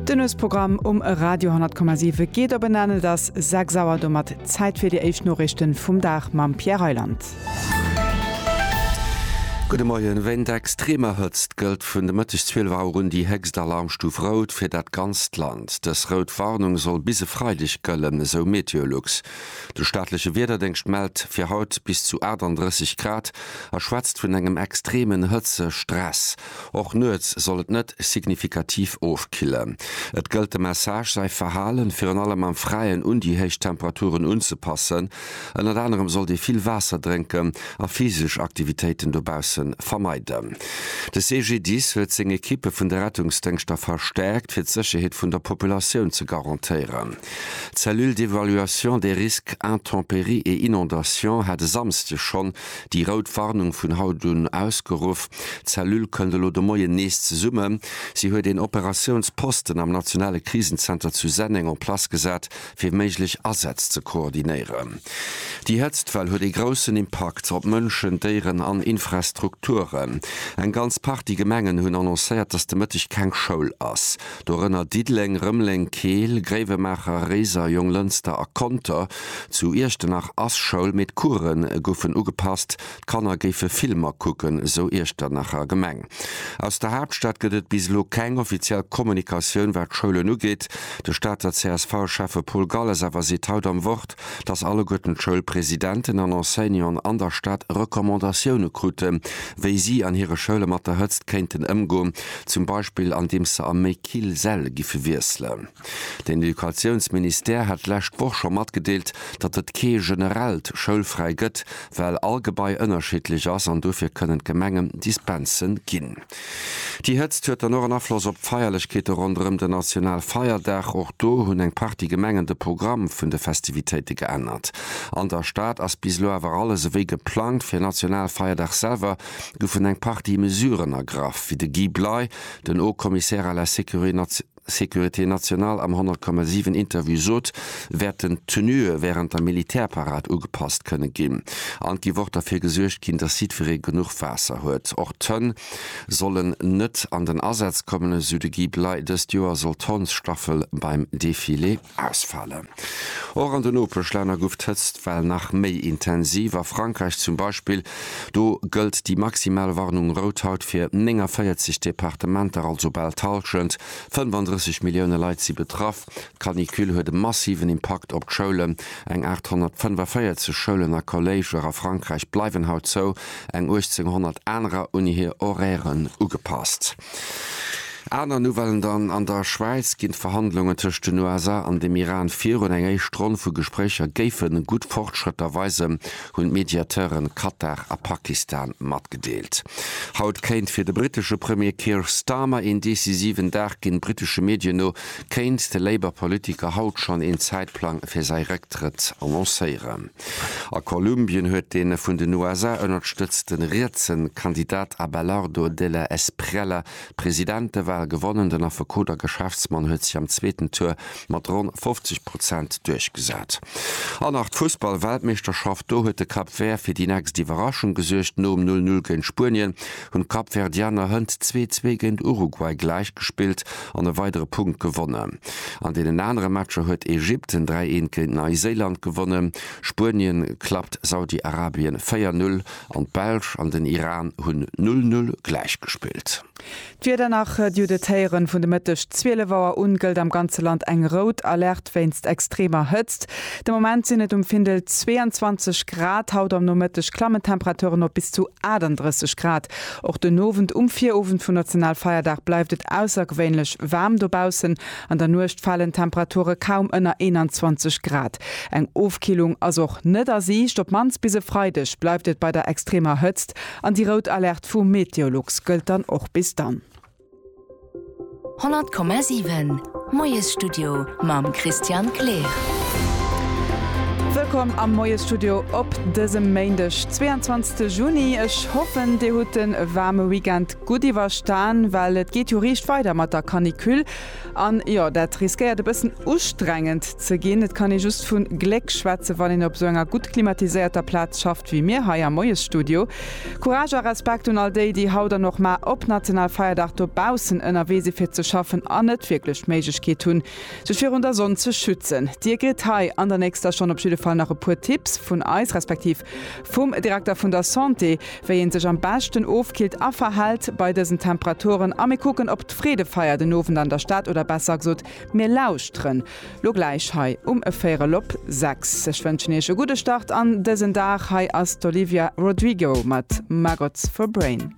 Den Nuetsprogramm um Radio 10,7 geet op en Enn. Et ass 6 Auer, domat Zäit fir déi éischt Noriichte vum Dag mam Pierre Reyland. Gudde Moien, Wéint extremer Hëtzt gëllt vun de Mëtteg 12 Auer un déi héchst Alarmstuf Rout fir dat ganzt Land. Dës rout Warnung soll bis e Freideg gëllen, esou Meteolux. De staatleche Wiederdéngscht mellt fir haut bis zu 38 Grad a schwätzt vun engem extremen Hëtzestress. Och nuets soll et net signifikativ ofkillen. Et gëllt de Message, säi Verhalen, virun allem am Fräien, un déi héich Temperaturen unzepassen. Ënnert anerem sollt ee vill Waasser drénken a physesch Aktivitéiten dobausse vermeiden. De CGDIS huet seng Ekippe vun de Rettungsdéngschter verstäerkt, fir d'Sécherheet vun der Populatioun ze garantéieren. D'Cellule d'évaluation des risques intempéries et inondations hat e Samsde schonn Déi rout Warnung vun haut un ausgeruff. D'Cellule kënnt elo de Moien nees zesummen. Si huet een Operatiounsposten am nationale Krisenzenter zu Senneng en place gesat, fir méiglech Asätz ze koordinéieren. Déi Hëtztwell huet ee groussen Impakt op Mënschen, Déieren an Infrastrukturen. Eng ganz Partie Gemengen hunn annoncéiert, dass de Mëtteg keng Schoul ass. dorënner Diddeleng, Rëmeleng, Keel, Gréiwemaacher, Réiser, Jonglënster a Conter. Zu Iechternach ass Schoul, mee d'Course goufen ugepasst, d'Kanner géife Filmer kucken, sou Iechternacher Gemeng. Aus der Haaptstad gëtt et bis elo keng offiziell Kommunikatioun, wat d'Schoulen ugeet. De Stater CSV-Schäffe Paul Galles awer seet haut am Wort, dass alleguerten d'Schoulpresidenten an Enseignanten an der Stad Recommandatioune krute wéi si an hire Schoule mat der Hëtzt kéinten ëmgoen, zum Beispill andeems se a méi kill Säll giffe wiesselen. Den Educatiounsministère hat d'lescht Woch scho matgedeelt, datt et kee generellt Schoulfräi gëtt, well all Gebai ënnerschiddlech ass an dofir kënnen d'Gemengen Dispense ginn. Déi Hëtzt huet dann och en Afloss op d'Feierlechkeete ronderëm den Nationalfeierdag. Och do hunn eng Partie Gemengen de Programm vun de Festivitéite geännert. An der Stad ass bis elo awer alles ewéi geplangt. Fir Nationalfeierdag selwer goufen eng Partie Mesuren ergraff, wéi de Guy Bley, den Haut-Commissaire à la Sécurité nationale, Sécurité nationale am 100,7 Interview sot, wäerten d'Tenue wärend der Militärparad ugepasst kënne ginn. An et gi wor derfir gesuergt ginn, datt jiddweree genuch Waasser huet. Och d'Hënn sollen net an den Asaz kommen, esou de Guy Bley. Dëst Joer soll d'Hondsstaffel beim Defilé. Ausfalen. Och an de Nopeschlänner guff d'Hëtztwell nach méi intensiv, a Frankräich zum Beispill. Do gëllt déi maximal Warnung rout haut fir 49 Departementer, also bal d'Hallschent, 35 Millioune Leit si betraff. D'Canicule huet e massiven Impakt op d'Schoulen. Eng 845 Schoulen a Colléger a Frankräich bleiwen haut zou, eng 1.800 anerer un hir Horairen ugepasst. Aner Nouvellen dann, An der Schwäiz ginn d'Verhandlungen tëscht den USA an dem Iran virun. Eng éischt Ronn vu Gespréicher géife gutt Fortschrëtter weisen, hunn d'Mediateure Katar a Pakistan matgedeelt. Haut kéint fir de brittesche Premier Keir Starmer een decisiven Dag ginn. Brittesche Medien no kéint de Labour-Politiker haut schonn een Zäitplang fir säi Récktrëtt annoncéieren. A Kolumbien huet de vun den USA ënnerstëtzte rietse Kandidat Abelardo de la Espriella d'Presidentewal gewonnen. Den Affekot a Geschäftsmann huet sech am zweeten Tour mat ronn 50 Prozent duerchgesat. An nach d'Fussball-Weltmeeschterschaft. Do huet de Cap Vert fir déi nächst Iwwerraschung gesuergt nom 0 Null géint Spuenien. hunn d'Kapverdianer Hënt zwee zwee géint Uruguay gläich gespillt an e weidere Punkt gewonnen. An deenen anere Matcher huet Ägypten dräi eent géint Neiséiland gewonnen, Spuenien klappt Saudi-Arabien véier Null an d'Belsch an den Iran hunn Null Null gläich gespillt. D'Wieder nach, Judith Heyeren, Vun de Mëtteg 12 Auer un gëllt am ganze Land eng rout Alerte. Nord wéinst extremer Hëtzt. De Moment sinn et um Findel 22 Grad. Haut am Nomëtteg klammen d'Temperature op bis zu 38 Grad. Och den Owend, um Virowend vun Nationalfeierdag, bleift et aussergewéinlech waarm dobaussen. An der Nuecht falen d'Temperature kaum ënner 21 Grad. Eng Ofkillung ass och net a Siicht. Op d'mannst bis e Freideg bleift et bei der extremer Hëtzt an déi rout Alerte vu Meteolux gëllt dann och bis dann. 100,7 Moiesstudio mam Christian Kleer. Wëllkomm am Moiesstudio op dësem Méindeg, 22 Juni. Ech hoffen, Dir hutt de waarme Weekend gutt iwwerstan, well et geet jo riicht weider mat der Canicule. An jo, dat riskéiert e bëssen ustrengend ze ginn. Et kann ee just vu Gléck schwätzen, wann een op esou enger gutt klimatiséierter Plaz schafft wéi mir hei am Moiesstudio. Courage a Respekt un all déi, déi haut an och mar op Nationalfeierdag dobaussen ënnerwee si fir ze schaffen an net wierklech d'Méiglechkeet hunn, sech virun der Sonn ze schützen. Dir kritt hei an der nächster Stonn op jidde Fall nach e puer Tipps vun eis, respektiv Vum Direkter vun der Santé, wéi een sech am beschten ofkillt a verhält bei dësen Temperaturen. A mir kucken op d'Freedefeier den Owend an der Stad, oder besser gsot, mir lauschteren lo gläich hei um véierel op 6. Ech wënschen Iech e gudde Start an dësen Dag. Hei ass d'Olivia Rodrigo mat Maggots for Brain.